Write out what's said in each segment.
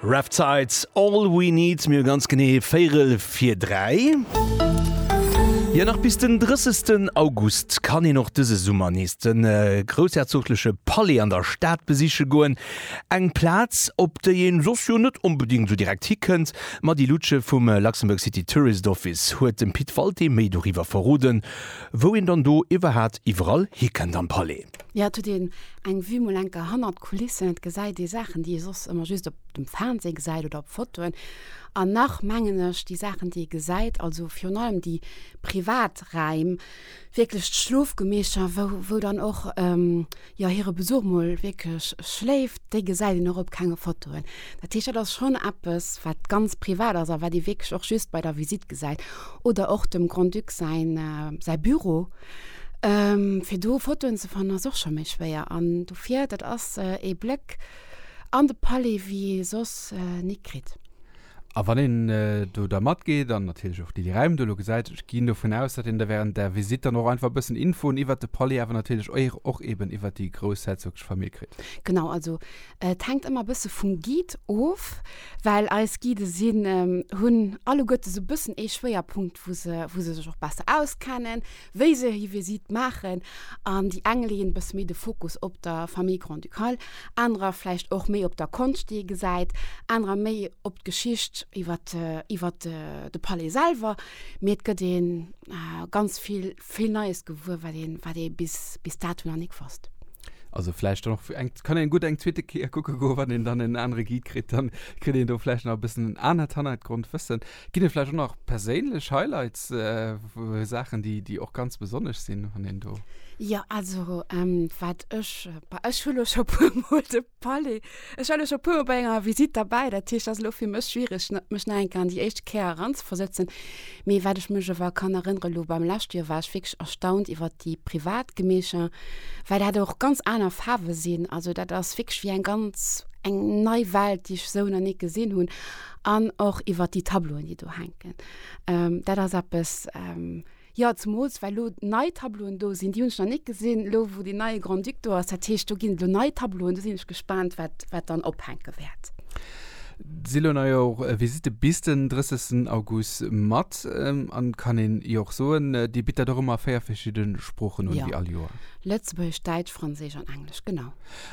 Rhaptides, All we need, mir hu ganz genee véirel vir dräi. Jo, nach bis den 30 August kann een och dëse Summer nees de groussherzogleche Palais an der Stad besiche goen. Eng Plaz, op déi ee soss jo net onbedéngt esou direkt hi kënnt. D'Mady Luttsche vum Luxembourg City Tourist Office huet dem Pit Walté méi doriwwer verroden, wou een dann do iwwerhat iwwerall hi kënnt am Palais. Jo, et huet een eng Vue mol enker hannert d'Kulissen. Et gesäit ee Saachen, déi ee soss ëmmer just op dem Fernseh gesäit oder op Fotoen. An nach mengen ech, déi Saachen, déi ee gesäit, also virun allem déi privat Räim, wierklech d'Schlofgemeescher, wou, wou dann och, jo, hire Besuch mol wierklech schléift, déi gesäit een och op kenge Fotoen. Dat heescht, dat ass schonn eppes, wat ganz privat ass a wat ee wierklech och just bei der Visite gesäit. Oder och dem Grand-Duc säin, säi Büro. Fir do Fotoen ze fannen ass och scho méi schwéier an dofir dat ass ee Bléck an de Palais wéi ee soss nik kritt. A wann een do da matgeet an natierlech och déi Räim do elo gesäit, ech ginn dovun aus, datt een da während der Visitt dann och einfach e bëssen Infoen iwwert de Palais awer natierlech och eben iwwert déi groussherzoglesch Famill kritt. Genau, also Et hänkt ëmmer e bësse vum Guide of, well eis Guide sinn, hunn alleguerte esou e bëssen ee Schwéierpunkt, wou se, wou se sech och besser auskennen, wéi se hir Visitt maachen. An déi eng leeën e bësse méi de Fokus op der Famille Grand-Ducale, anerer vläicht och méi op der Konscht, déi ee gesäit, anerer méi op d'Geschicht iwwer, iwwer de Palais selwer. Mee et gëtt ee ganz vill. vill Neies gewuer, wat een, wat ee bis, bis dato nach net gewosst. Also vläicht dann och fir eng, kann een gutt eng zweete Kéier kucke goen, wann een dann en anere Guide kritt, dann kritt een do vläicht nach e bëssen en anert Hannergrondwëssen. Ginn et vläicht och nach perséinlech Highlights, Saachen, déi, déi och ganz besonnesch sinn, wann een do. Jo, also wat ech, bah ech hu lo scho puermol de. Fally, ech war elo scho e puer Mol bei enger Visitt derbäi, dat heescht, ass elo fir mech schwierig, mech nach eng Kéier an déi éischt Kéier eranzeversetzen. Mee wat ech mech awer kann erënnere elo beim leschte Joer, war ech wierklech erstaunt iwwert déi privat Gemecher, well dat och ganz aner Faarwe sinn. Also dat ass wierklech wéi eng ganz eng nei Welt, déi ech esou nach ni gesinn hunn. An och iwwert déi Tableauen, déi do hänken. Dat ass eppes. Jo, zemools well elo nei Tableauen do sinn, déi hunn ech nach net gesinn, elo wou deen neie Grand-Duc do ass. Dat heescht, do ginn et elo nei Tableauen, do sinn ech gespaant, wat wat dann ophänke wäert. Et si elo nei jo och Visitte bis den 30 August mat an et kann een jo och soen, Dir bitt dat och ëmmer a véier verschidde Sproochen un, wéi all Joer. Lëtzebuergesch, Däitsch, Franséisch an Englesch, genau.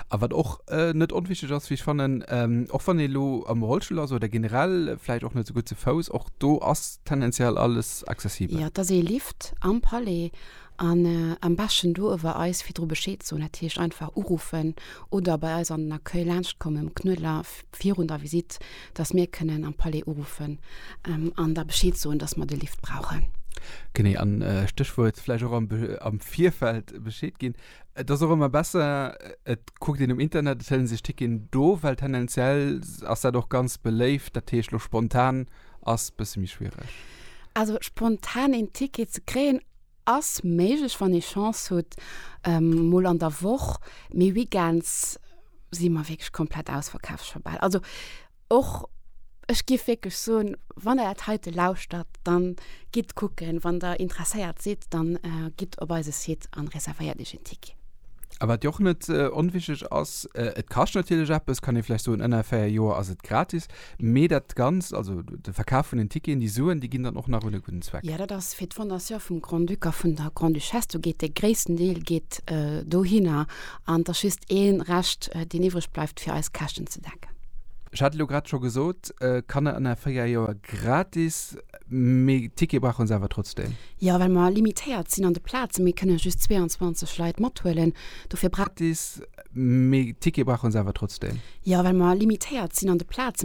A wat och net onwichteg ass, wéi ech fannen, och wann ee lo am Rollstull ass oder generell vläicht och net esou gutt ze Fouss, och do ass tendenziell alles, ganz accessibel. Jo, et ass ee Lift am Palais an am beschten do uewer eis virdru Bescheed soen, dat heescht einfach uruffen oder bei eis an den Accueil laanscht kommen um Knuedler virun der Visitt, dass mir kënnen am Palais uruffen an da Bescheed soen, dass mer de Lift brauchen. Genee, an Stéchwuert vläicht och am Virfeld Bescheed ginn. Et ass och ëmmer besser, et kuckt een um Internet, et hëllen sech Ticketen do, well tendenziell ass dat och ganz beléift, dat heescht elo spontan. ass bësse méi schwiereg. Also spontan een Ticket ze kréien ass méiglech, wann ee Chance hutt, mol an der Woch, mee Weekends si mer wierklech komplett ausverkaaft scho bal. Also och ech géif wierklech soen, wann Der dat heite lauschtert, dann gitt kucken, wann Der interesséiert sidd, dann gitt op eise Site an reservéiert Iech een Ticket. A wat jo och net onwichtig ass, et kascht natierlech eppes, kann ee vläicht soen, ënner 4 Joer ass et gratis. Mee dat Ganzt, also de Verkaf vun den Ticketen, déi Suen, déi ginn dann och nach un e gudden Zweck. Jo, dat ass fir d'Fondation vum Grand-Duc a vun der Grande-Duchesse. Do geet de gréissten Deel geet dohinner an et ass just ee Rescht, deen iwwreg bleift, fir eis Käschten ze decken. Ech hat elo grad scho gesot, Kanner ënner véier Joer gratis, mee d'Tickete brauche se awer trotzdeem? Jo, well mer limitéiert sinn an de Plazen. Mir kënne just 22 Leit mathuelen, dofir. Gratis, mee d'Tickete brauche se awer trotzdeem? Jo, well mer limitéiert sinn an de Plazen.